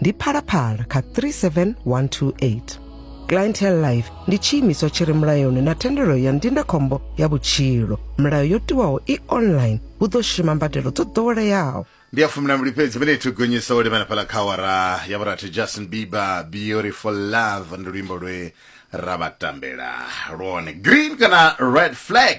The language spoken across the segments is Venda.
ndi phalaphala kha 37128 clientele life ndi tshiimiswa tshi re mulayoni na thendelo ya ndindakhombo ya vhutshilo milayo yo tiwaho i online hu ḓo shuma mbadelo dzo ḓoweleaho ndi ya fumi na mbili fhedzi vene ithu gonyisa u lemela phala kha awara ya vhurathi justin bieber beautiful love ndi luimbo lwe ra vha tambela lwone green kana red flag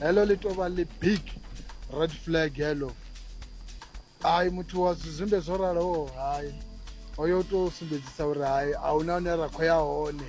heḽo ḽi tou vha ḽi big red flag heḽo hai muthu wa zwizwimbe zwo raloho hai hoyo u tou sumbedzisa uri hai a hu na hune ra khou ya hone